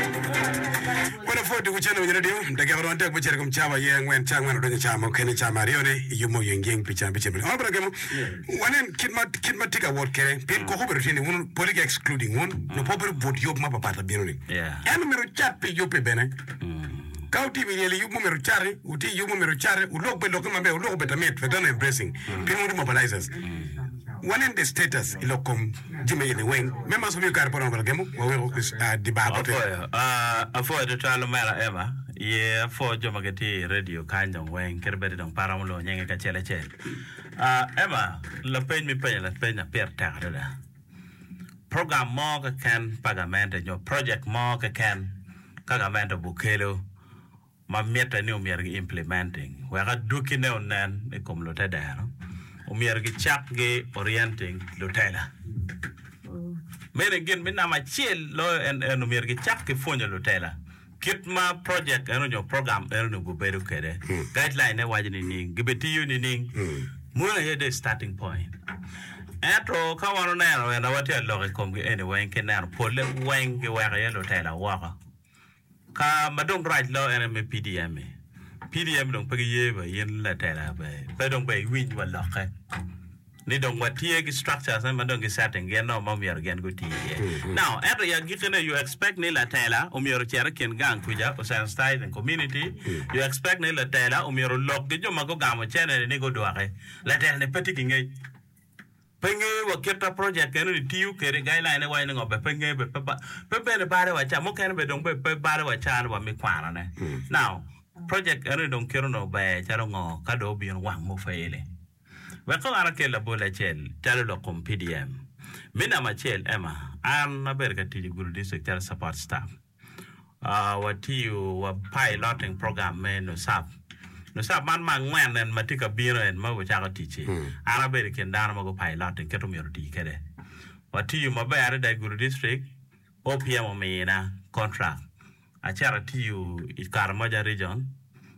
Ma lapwod dok ocen owinyere dyo, dakika romo adek me cito i kom cawa aye angwen, ca angwen odonyo i cawa mukene, cawa ma aryone iyub mo yengiyeng pi cawa me cemo-ni. Onongo bene gemo, wanen kit ma, kit ma tye ka wot kwede, pien koko obedo tye ni wun poli ki excluding wun, nyo pe obedo but yub ma papat labino-ni. Ento myero wucat pi yub-bi bene. Ka wutye i ryel i yub mo myero wucati, wutye i yub mo myero wucati, wulok bene lokki maber, wulok obed lamit, veterinary dressing, pien wun ri mobilizers. Wanen the status i lok kom. jami eni weng. Me maso miyo kare pe oromo bene gemo wa weko di bar bote. Apwoyo, aah, apwoyo tutwal omera Emma, ye apwoo jo ma gitye i radio kany dong weng, kit bedi dong pe aromo lwongo nyingi kacel acel. Aah, Emma, lapeny ma ipenyo lapeny na pire tek adada, program mo keken pa gamente nyo project mo keken ka gamente obukelo, ma mitte ni omyero gi implementing wek adwogine onen i kom lutedero, omyero gicak gi orienting lutela. Mene gin me namba acel loyo en en omyero gicak ki pwonyo lutela kit ma project eno nyo program eno onongo bedo kwede. Guideline ne waco nining? Gibitiyo nining? Mono aye dong starting point. Ento ka wan oneno ena watye ka lok i komgi eni weng ki neno polle weng giweko iye lutela woko. Ka ma dong rac lo en aye me PDM-mi. PDM dong pe giye wa in latela ber pe dong ber iwiny wa lokke ni dong watye ki structures ne ma dong gi setting gin nongo ma omyero gin guti iye. Now, ento i agikine you expect ni latela omyero ocit i kin gang kuca osensitize the community, you expect ni latela omyero olok ki jo ma gugamo cene-ni ni gudwoki. Latela-ni pe tye ki ngec. Pe nge wa kit a project eno ni tiyo kede guideline ne waco ni ngo be pe nge be pe pe bene bale wa ca mukene be dong be pe bale wa ca ni wa mi kwano ne now project eno ni dong kit onongo ber calo ngo ka dong obino wang mo faili wek kong an akel labol acel calo lok kom PDM me namba acel Emma an abedo ka tic i Gulu district calo support staff. watiyo wa piloting program me nusap nusap man ma angwen en ma tye ka bino en ma wacako ticci an abedo i kin dano ma gu piloting kit omyero oti kwede watiyo maber adada i gudo dictrik OPM omina contract acito atiyo i karamoja region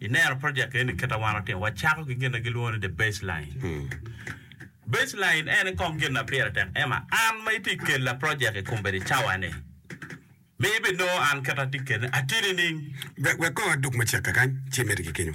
I neno project eni kit ma wan watimo, wacako ki gin ma gilwongo ni the baseline. Baseline en kong gin ma pire tek ema an ma itye kela project i kombedi cawa ni mi ibinongo an kit atye kele atye nining? Wek wek kong adog macek kakany ci imede ki kenyo.